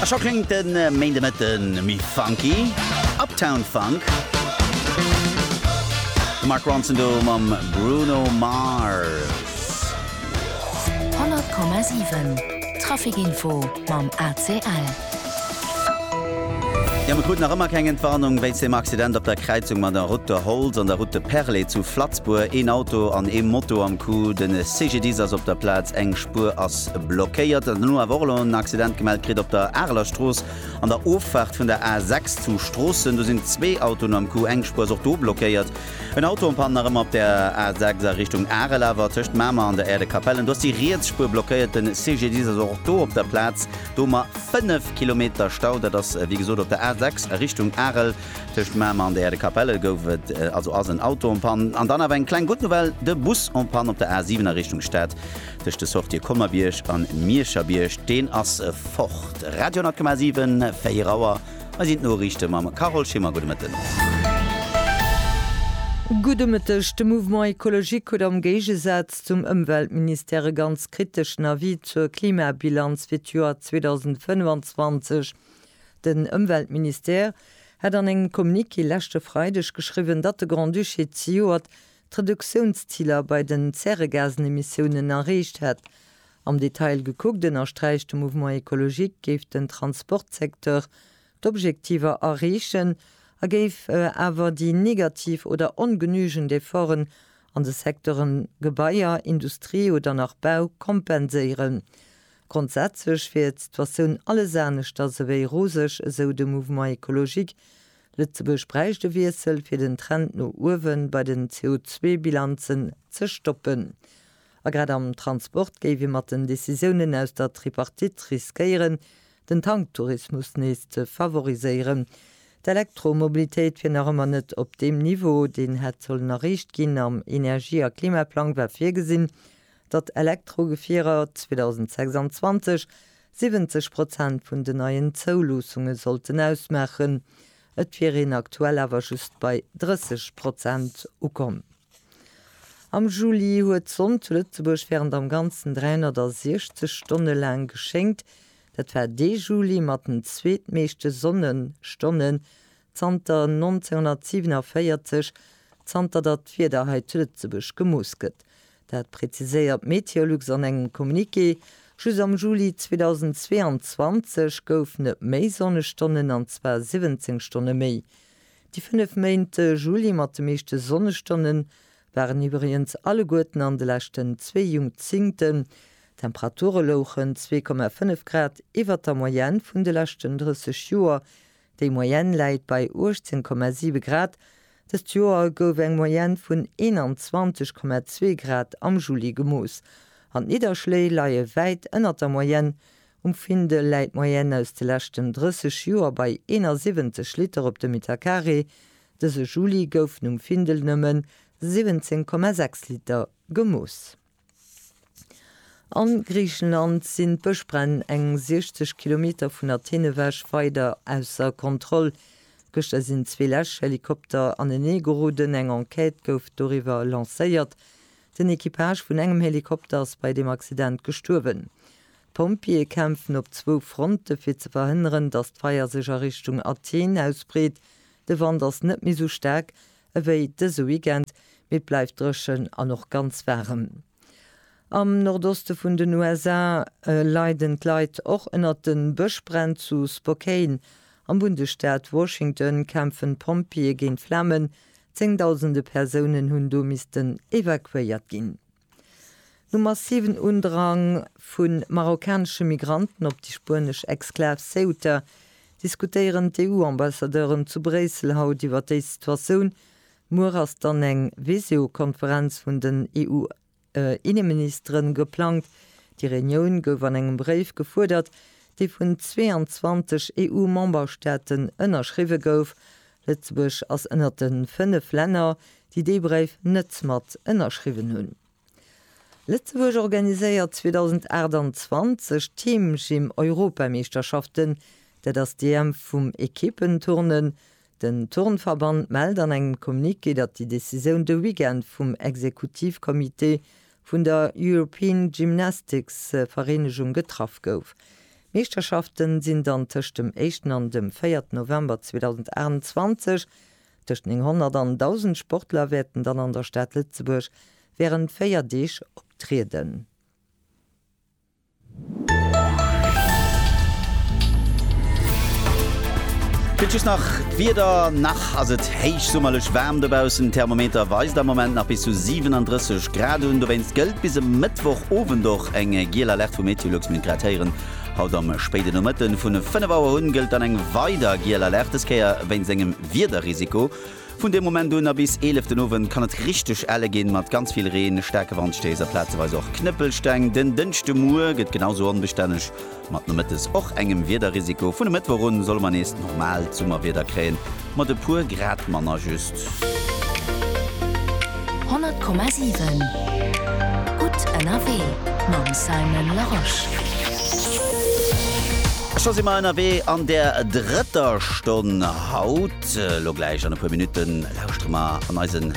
A scho kléngt de Méindemëtten méi funky, Uptown Funk, de Mark Ronson do mam Bruno Mars. 100,7 Trafic Info mam ACL. Jo, mir kruten nach ëmmer keng Entwarnung wéinst dem Accident op der Kräizung mat der Route de Holtz an der Route de Perlé zu Flatzbourg. Een Auto an ee Moto am Coup de CGDIS ass op der Plaz. Eng D'Buer ass blockéiert. Den elo awer och elo en Accident gemellt kritt op der Areler Strooss an der Offaart vun der A 6 zu Stroossen. Do sinn zwee Autoen am Coup, eng Spuer ass och do blockéiert. En Auto am Pann nach ëmmer op der A 6 a Richtung Arel awer tëscht Mamer an der Aire de Capellen. Do ass déi riets Spuer blockéiert. Den CGDIS ass och do op der Plaz. Do mar 5 Kilometer Stau. Dat ass wéi gesot op der A 6 a Richtung Arel. Tëscht Mamer an der Äerdekapelle gouf et also ass en Auto en Panne. An dann awer eng kleng gutt Nouvelle, de Bus en Panne op der A7 a Richtung Stad tëscht de Sortië Colmer-Bierg an Mierscher-Bierg. Deen ass fort. Radio 100,7, 4 Auer, hei sinn d'Noriichte mam Carole Schimmer. Gudde Mëtten. Gudde Mëtteg. De Mouvement écologique huet am Géigesaz zum Ëmweltministère e ganz kriteschen Avis zur Klimabilanz fir d'Joer 2025 Den Ëmweltministère hätt an engem Communiqué leschte Freideg geschriwwen, datt de Grand-Duché zejoert d'Reduktiounsziler bei den Zäregasenemissiounen erreecht hätt. Am Detail gekuckt, ënnersträicht de Mouvement Ecologique, géif den Transportsecteur d'Objektiver erreechen a géif awer déi negativ oder ongenügend Efforten an de Secteure Gebaier, Industrie oder nach Bau kompenséieren. Grondsätzlech wier d'Situatioun alles aneschters ewéi roseg, esou de Mouvement écologique. Lëtzebuerg bräicht e Wiessel, fir den Trend no uewe bei den CO2-Bilanzen ze stoppen. A grad am Transport géif ee mat den Decisiounen aus der Tripartite riskéieren, den Tanktourismus nees ze favoriséieren. D'Elektromobilitéit wier nach ëmmer net op deem Niveau, deen hätt sollen erreecht ginn am Energie a Klimaplang war virgesinn, datt Elektrogefierer 2026 70 Prozent vun den neien Zouluussunge sollten ausmaachen. Et wier een aktuell awer just bei 30 Prozent ukomm. Am Juli huet d'Sonn zu Lëtzebuerg wärend am Ganzen 360 Stonne laang geschéngt. Dat war dee Juli mat den zweetmeeschte Sonnestonnen, Zanter 1947, zanter datt d'Wieder hei zu Lëtzebuerg gemooss gëtt, dat preziséiert Meteolux an engem Communiqué. Just am Juli 2022 gouf net méi Sonnestonnen, an zwar 17 Stonne méi. Déi fënnef Méint Juli mat de meeschte Sonnestonne waren iwwregens alleguerten an de leschten zwee Jungzingten. D'Temperature louchen 2,5 Grad iwwert der Moyenne vun de leschten 30 Joer, Déi Moyenne läit bei 18,7 Grad. Dëst Joer gouf eng Moyenne vun 21,2 Grad am Juli gemooss an d'Nidderschléi leie wäit ënnert der Moyenne. Um Findel läit d'Moyenne aus de leschten 30 Joer bei 71 Liter op de Metercarré. Dëse Juli goufen um Findel nëmmen 17,6 Liter gemooss. A Griichenland sinn d'Bëschbränn eng 60 Kilometer vun Athen ewech weider ausser Kontroll. Gëschter sinn zwee Läschhelikopter anenee geroden. Eng Enquête gouf doriwwer lancéiert. Den Equipage vun engem Helikopter ass bei deem Accident gestuerwen. D'Pompjeeë kämpfen op zwou Fronte fir ze verhënneren, datt d'Feier sech a Richtung Athen ausbreet. De Wand ass net méi sou staark, Ewéi dëse Weekend, mee et bleift dréchen an och ganz waarem. Am Nordoste vun den USA leiden d'Leit och ënnert de Bëschbränn. Zu Spokane am Bundesstaat Washington kämpfen d'Pompjeeë géint d'Flamen. Zéngdausende Persounen hunn do missten evakuéiert ginn. Nom massiven Undrang vu marokkanesche Migranten op déi spuenesch Exklav Ceuta diskutéieren d'EU-Ambassadeuren zu Bréissel haut iwwer déi Situatioun. Muer ass dann eng Visio-Konferenz vun den EU-Inneministeren geplangt. Déi Reunioun gouf an engem Bréif gefuerdert, dee vun 22 EU-Memberstaaten ënnerschriwwe gouf, Lëtzebuerg ass ënnert de fënnef Länner, déi dee Bréif net mat ënnerschriwwen hunn. Lëtzebuerg organiséiert 2028 d'Teamgym-Europameeschterschaften, dat ass d'EM vum Ekippen-Turnen. Den Turnverband mellt an engem Communiqué, datt déi Decisioun de Weekend vum Exekutivcomité vun der European Gymnastics Vereenegung getraff gouf. D'Meeschterschafte sinn dann tëscht dem éischten an dem véierten November 2028. Tëscht 900 an 1.000 Sportler wäerten dann an der Stad Lëtzebuerg wärend véier Deeg optrieden. Fir just nach d'Wieder, Nach ass et héichsummerlech waarm dobaussen. Den Thermometer weist am Moment nach bis zu 37 Grad un. Dowéinst gëllt bis e Mëttwochowend och eng giel Alerte vu Meteolux. Mir hunn et grad héieren, haut am spéiden Nomëtten, vun 5 Auer un gëllt dann eng weider giel Alerte, dës Kéier wéinst engem Wiederrisiko. Vun deem Moment un a bis 11 den Owend kann et richteg elle ginn, mat ganz vill Reen, staarke Wandstéiss a plazeweis och Knëppelsteng. Den Dënschdemuer gëtt genausou onbestänneg, mat nomëttes och engem Wiederrisiko. Vun e Mëttwoch un solle mer nees normaalt Summerwieder kréien, mat e puer Grad manner just. 100,7 gutt ënnerwee mam Simon Larosche. Scho si mer ënnerwee an der drëtter Stonn haut. Lo gläich an e puer Minutte lauschtere mer an eisen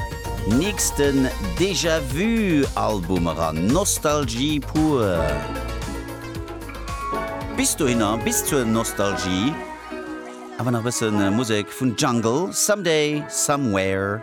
nächsten Déjà Vu Album eran. Nostalgie pur! Bis dohinner, bis zur Nostalgie, awer nach e bësse Musek vun Jungle, Someday, Somewhere.